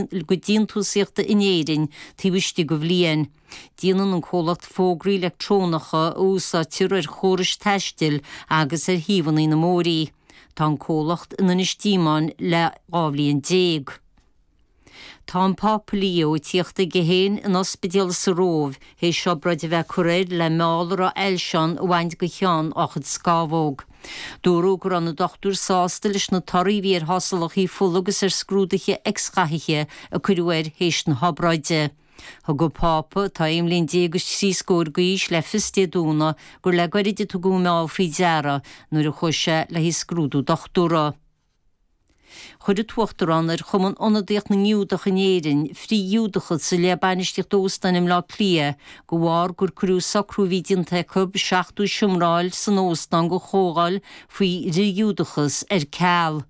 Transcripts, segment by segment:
gcuid déantúsaíochta in Éirinn taobh istigh de bhliain. Déanann an comhlacht fógraí leictreonacha a úsáidtear ar chórais taistil agus ar shuíomhanna móra. Tá an comhlacht in Inis Díomáin le dhá bhliain déag. Tá an Pápa Leo ag tíocht chuige féin in ospidéal sa Róimh théis obráid a bheith curtha air le meall a raibh ailse ann a bhaint go cheann á chuid scámhóg. Dúradh go raibh na dochtúirí sásta leis na torthaí a bhí ar thástálachaí fola agus ar scrúduithe x-ghathaithe a cuireadh air théis na hobráide. Thug an Pápa, atá aon bhliain déag agus trí scóir d'aois, le fios Dé Domhnaigh gur le gairid a tugadh an meall faoi deara nuair a chuaigh sé le haghaidh scrúdú dochtúra. Chuir an tUachtarán ar Chumann Ionadaíoch na nGiúdach in Éirinn, frith-Ghiúdachas i leith bainistíocht óstáin i mBleá Cliath de bharr gur cuireadh socrú a bhí déanta acu seachtó seomra a fháil san óstán go chomhdháil faoi fhrith-Ghiúdachas ar ceal.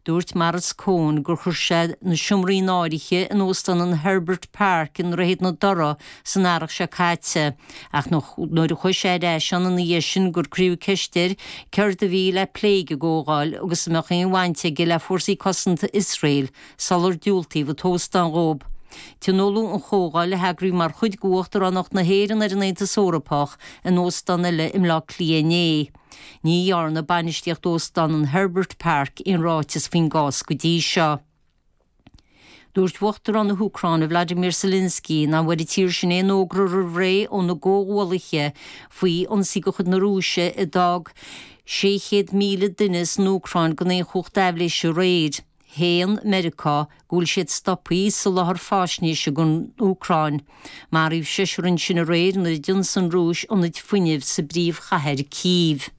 Dúirt Maurice Cohen gur chuir sé na seomraí in áirithe in Óstán an Herbert Park i nDroichead na Dothra san earrach seo caite. ach nuair a chuaigh sé ar ais ann ina dhiaidh sin gur cuireadh ceist air céard a bhí le plé ag an gcomhdháil agus an mbeadh aon bhaint aige le Fórsaí Cosanta Iosrael sular diúltaíodh an t-óstán dhó. Tionóladh an chomhdháil, a eagraíodh mar chuid d'Uachtaránacht na hÉireann ar an Aontas Eorpach, in óstán eile i mBleá Cliath inné. Ní dhearna bainistíocht Óstán an Herbert Park aon ráiteas faoin gcás go dtí seo. Dúirt Uachtarán na hÚcráine Volodymyr Zelensky nach bhfuair an tír sin aon fhógra roimh ré óna gcomhghuallaithe faoi ionsaí de chuid na Rúise a d'fhág 600,000 duine san Úcráin gan aon chumhacht aibhléise aréir. Shéan Meiriceá go bhfuil siad stopthaí ag soláthar faisnéise don Úcráin. Maraíodh seisear ansin aréir nuair a d'ionsaigh an Rúis ionaid fuinnimh sa bpríomhchathair Cív.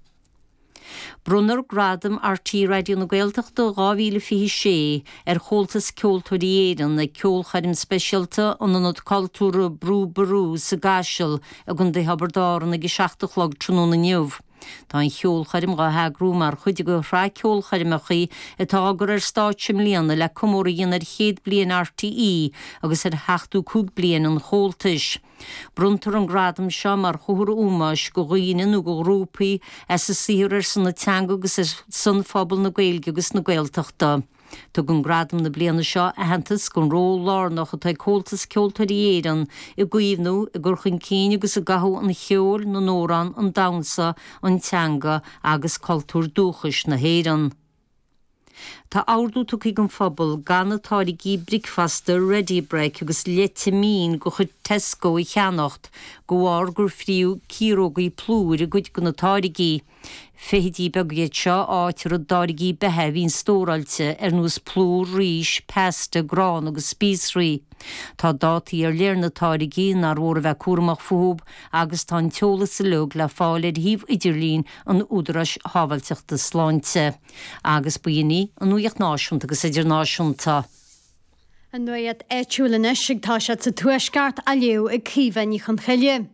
Bronnfar Gradam RTÉ Raidió na Gaeltachta 2026 ar Chomhaltas Ceoltóirí Éireann ag ceolchoirm speisialta in Ionad Cultúrtha Brú Ború sa gCaiseal i gContae Thiobraid Árann ag 7 a chlog tráthnóna inniu. Tá an cheolchoirm á heagrú mar chuid de shraith ceolchoirmeacha atá á gcur ar stáitse i mbliana le comóradh a dhéanamh ar chéad bliain RTÉ agus ar sheachtó cúig bliain an Chomhaltais. Bronntar an gradam seo mar chomhartha ómóis go dhaoine nó go ghrúpaí as a saothar ar son na teanga agus ar son phobal na Gaeilge agus na Gaeltachta. Tugann gradam na bliana seo aitheantas don ról lárnach atá ag Comhaltas Ceoltóirí Éireann i gcaomhnú, i gcur chun cinn agus i gcothú an cheoil, na n-amhrán, an damhsa, an teanga agus cultúr dúchais na hÉireann. Táthar ag tabhairt ar an phobal gan na táirgí bricfeasta Ready Brek agus leite mín de chuid Tesco a cheannacht de bharr gur fríodh ciarógaí plúir i gcuid de na táirgí. Feithidí beaga iad seo a fhaightear i dtáirgí beatha a bhíonn stóráilte ar nós plúr, rís, pasta, grán agus spíosraí. Tá dátaí ar leith ar na táirgí nár mhór a bheith cúramach fúthu agus tá an t-eolas uilig le fáil ar shuíomh idirlín an Údaráis Sábháilteachta Sláinte, agus b'in í an nuaíocht náisiúnta agus idirnáisiúnta. An nuaíocht áitiúil anois agus tá siad sa Tuaisceart á léamh ag Caoimhe Ní Chonchoille.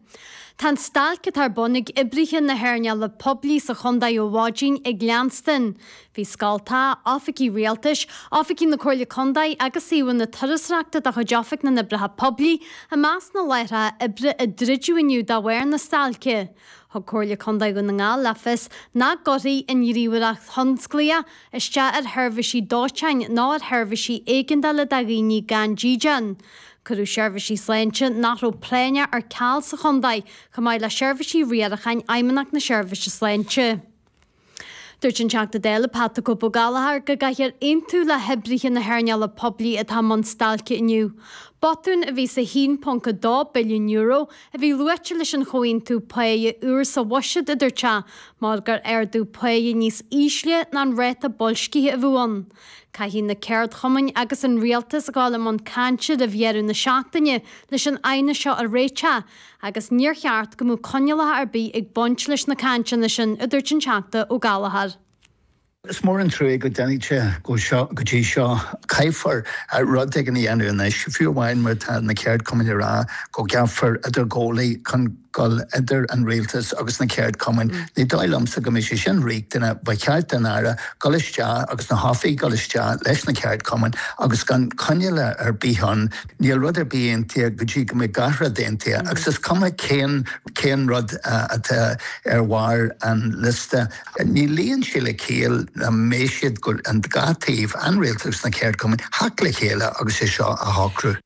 Tá an stailc atá ar bun ag oibrithe na hearnála poiblí sa chontae ó mhaidin ag leanstan. Bhí scoltacha, oifigí rialtais, oifigí na Comhairle Contae agus suíomhanna turasóireachta de chuid Oifig na nOibreacha Poiblí i measc na láithreacha oibre a druideadh inniu de bharr na stailce. Thug Comhairle Contae Dhún na nGall le fios nach gcuirfidh an ghníomhaíocht thionsclaíoch isteach ar sheirbhísí dóiteáin ná ar sheirbhísí éigeandála do dhaoine gan dídean. Cuireadh seirbhísí sláinte nach raibh práinneach ar ceal sa chontae, chomh maith le seirbhísí riaracháin Fheidhmeannacht na Seirbhíse Sláinte. Dúirt an Teachta Dála Pat 'The Cope' Gallagher go gcaithfear aontú le hoibrithe na hearnála poiblí atá i mbun stailce inniu. Botún a bhí sa €1.2 billiún a bhí luaite leis an chomhaontú páighe úr sa bhuiséad, a dúirt sé, mar gur ardú páighe níos ísle ná an ráta boilscithe a bhí ann. Caithfidh na ceardchumainn agus an Rialtas a ghabháil i mbun cainte roimh dheireadh na seachtaine leis an aighneas seo a réiteach, agus níor cheart go mbeadh coinníollacha ar bith ag baint leis na cainteanna sin, a dúirt an Teachta Ó Gallachóir. Is mór an truaigh go dtáinig sé go dtí seo. Caithfear rud éigin a dhéanamh anois, fiú amháin má tá na ceardchumainn ag rá go gceapfar idirghabhálaí chun dul idir an Rialtas agus na ceardchumainn. Ní dóigh liomsa go mbeidh sé sin riachtanach. Ba cheart don Aire dul isteach agus na hoifigigh dul isteach leis na ceardchumainn agus gan coinníollacha ar bith ann. Níl rud ar bith aontaithe go dtí go mbeidh gach rud aontaithe, agus is cuma cén rud atá ar bharr an liosta, ní luíonn sé le ciall nach mbeidh siad, an dá thaobh, an Rialtas agus na ceardchumainn, teacht le chéile agus é seo a shocrú.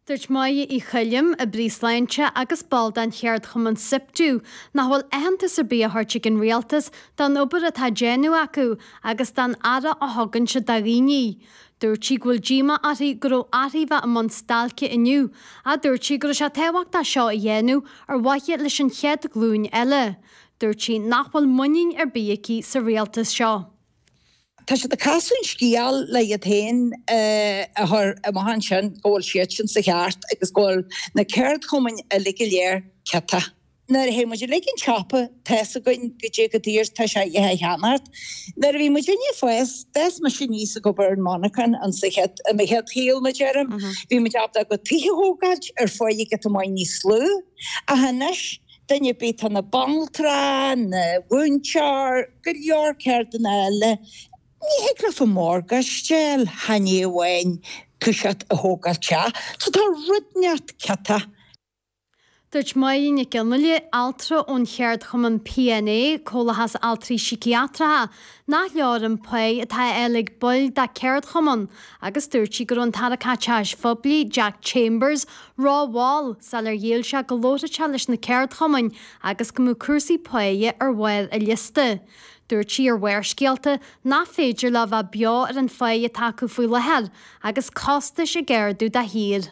Dúirt Moya Uí Choilm, Oibrí Sláinte agus ball den cheardchumann Siptu, nach bhfuil aitheantas ar bith á thabhairt ag an Rialtas don obair atá á déanamh acu agus don aire a thugann siad do dhaoine. Dúirt sí go bhfuil díomá uirthi go raibh uirthi a bheith i mbun stailce inniu, ach dúirt sí go raibh sé tábhachtach é seo a dhéanamh ar mhaithe leis an chéad ghlúin eile. Dúirt sí nach bhfuil muinín ar bith aici sa rialtas seo. Tá siad ag casadh an scéal le hiad féin a chur i maith ansin go bhfuil siadsan sa cheart agus go bhfuil na ceardchumainn uilig go léir ciotach. Nuair a théann muid uilig chun an tsiopa, tá's againn go dté chomh daor is atá sé iad a cheannacht. Nuair a bhí muid ag fás, d'fhás mise aníos ag obair ar monarchan ins an chéad, i mo chéad shaol mar a deirim, bhí muid ábalta tithe a thógáilt ar pháighe a bhí i bhfad níos lú, ach anois, duine ar bith, atá ina bhanaltra, ina mhúinteoir, go leor ceardanna eile, ní thig leat an morgáiste a fháil, chan é amháin toiseacht a thógáilt teach, so tá rud ínteacht ciotach. Dúirt Máire Nic Fhionnlaoich, altra ón cheardchumann PNA, Comhlathas Altraí Síciatracha, nach leor an pháighe atá á fháil ag baill dá ceardchumann agus dúirt sí go raibh an tAire Caiteachais Phoiblí, Jack Chambers, ró-mhall sular dhéileáil sé go láithreach leis na ceardchumainn agus go mbeadh cúrsaí páighe ar bharr a liosta. Dúirt sí ar Bharrscéalta nach féidir leo bheith beo ar an pháighe atá acu faoi láthair agus costais ag ardú de shíor.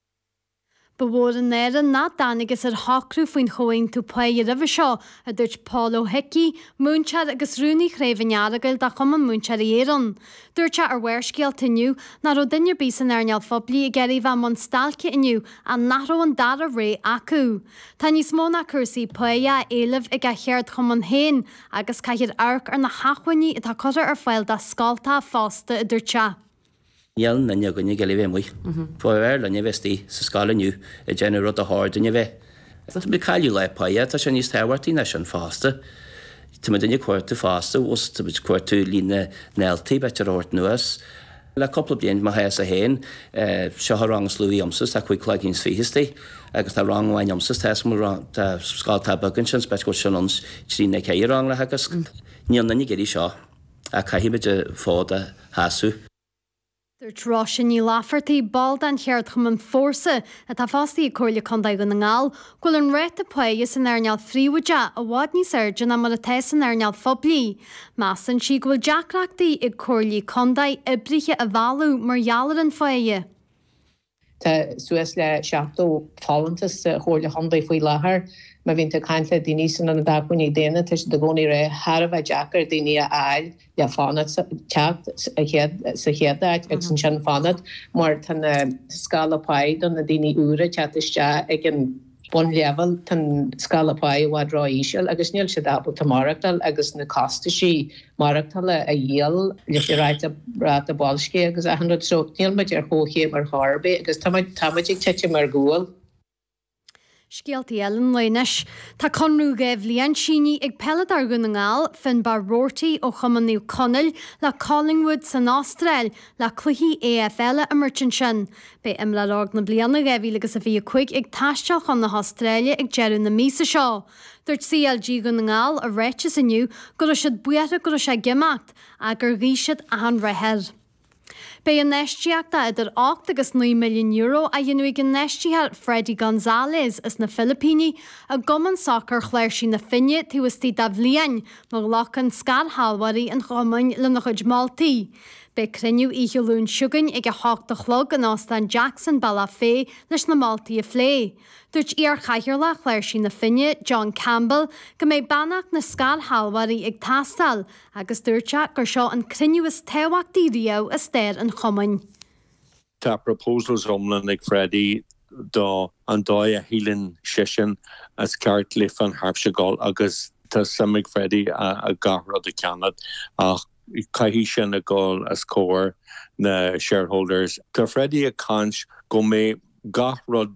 Ba mhór an náire nach dtángthas ar shocrú faoin Chomhaontú Páighe roimhe seo, a dúirt Pól Ó hIcí, múinteoir agus rúnaí Chraobh an Earagail de Chumann Múinteoirí Éireann. Dúirt sé ar Bharrscéalta inniu nach raibh duine ar bith san earnáil phoiblí ag iarraidh a bheith i mbun stailce inniu ach nach raibh an dara rogha acu. Tá níos mó ná cúrsaí páighe á éileamh ag a cheardchumann féin agus caithfear amharc ar na hachmhainní atá curtha ar fáil dá scoltacha fosta, a dúirt sé. Níl duine againne ag iarraidh a bheith amuigh. B'fhearr linne a bheith istigh sa scoil inniu ag déanamh an rud ar chóir dúinn a bheith. Tá muid ag cailleadh lá páighe, tá sé níos tábhachtaí ná sin fosta. Tá muid againne ag cuartú fosta, tá muid ag cuartú líon na ndaltaí a bheith á thabhairt anuas. Le cúpla bliain, mo thaithí fhéin, seo an rang is lú agamsa, tá cúig cloigín is fiche istigh, agus tá rang amháin agamsa, tá is mó rang, tá scoltacha beaga ansin, is b'ait go bhfuil sin ionns trí nó ceithre rang le teagasc. Níl duine ag iarraidh seo. Ach caithfimid an fód a sheasamh. Dúirt Róisín Ní Laifeartaigh, ball den cheardchumann Fórsa, atá fostaí ag Comhairle Contae Dhún na nGall, go bhfuil an ráta páighe san earnáil phríobháideach i bhfad níos airde ná mar atá san earnáil phoiblí. Measann sí go bhfuil deacrachtaí ag Comhairlí Contae oibrithe a mhealladh mar gheall ar an pháighe. Tá suas le 70 folúntas sa Chomhairle Contae faoi láthair. Má bhíonn tú ag caint le daoine san aonad Acmhainní Daonna, tá siad i gcónaí ag ráit tá sé thar a bheith deacair daoine a fháil le fanacht, teacht sa chéad áit agus ansin fanacht mar tá na scála páighe do na daoine úra teacht isteach ag an bunleibhéal, tá an scála páighe i bhfad ró-íseal agus níl siad ábalta maireachtáil agus na costaisí maireachtála a dhíol leis an ráta ráta boilscithe agus achan rud so níl muid ar chomhchéim ar chor ar bith agus tá muid tá muid ag titim ar gcúl. Scéaltaí eile an lae anois. Tá conradh dhá bhliain sínithe ag peileadóir Dhún na nGall, Finnbarr Roarty ó chumann Naomh Conaill le Collingwood san Astráil le cluichí AFL a imirt ansin. Beidh Imreoir Óg na Bliana 2000 agus a 25 ag taisteal chun na hAstráile ag deireadh na míosa seo. Dúirt CLG Dhún na nGall i ráiteas inniu go raibh siad buartha go raibh sé ag imeacht, ach gur ghuigh siad achan rath air. Beidh infheistíocht de idir ocht agus naoi milliún euro á dhéanamh ag an infheistítheoir Freddy Gonzalez as na Filipíní i gcumann sacair Chláirsí na Finne taobh istigh de bhliain, má ghlacann scairshealbhóirí an chumainn lena chuid moltaí. Beidh cruinniú oíche Luain seo chugainn ag a hocht a chlog in Óstán Jackson, Bealach Féich, leis na moltaí a phlé. Dúirt iar-chathaoirleach Chláirsí na Finne, John Campbell, go mbeidh beannacht na scairshealbhóirí ag teastáil agus dúirt sé gur seo an cruinniú is tábhachtaí riamh i stair an chumainn. Tá proposals iomlán ag Freddy do an dóigh a shíleann seisean is ceart le Finn Harps a ghabháil agus tá suim ag Freddy i gach rud a ceannach ach caithfidh sin a ghabháil os comhair na shareholders. Tá Freddy ag caint go mbeidh gach rud.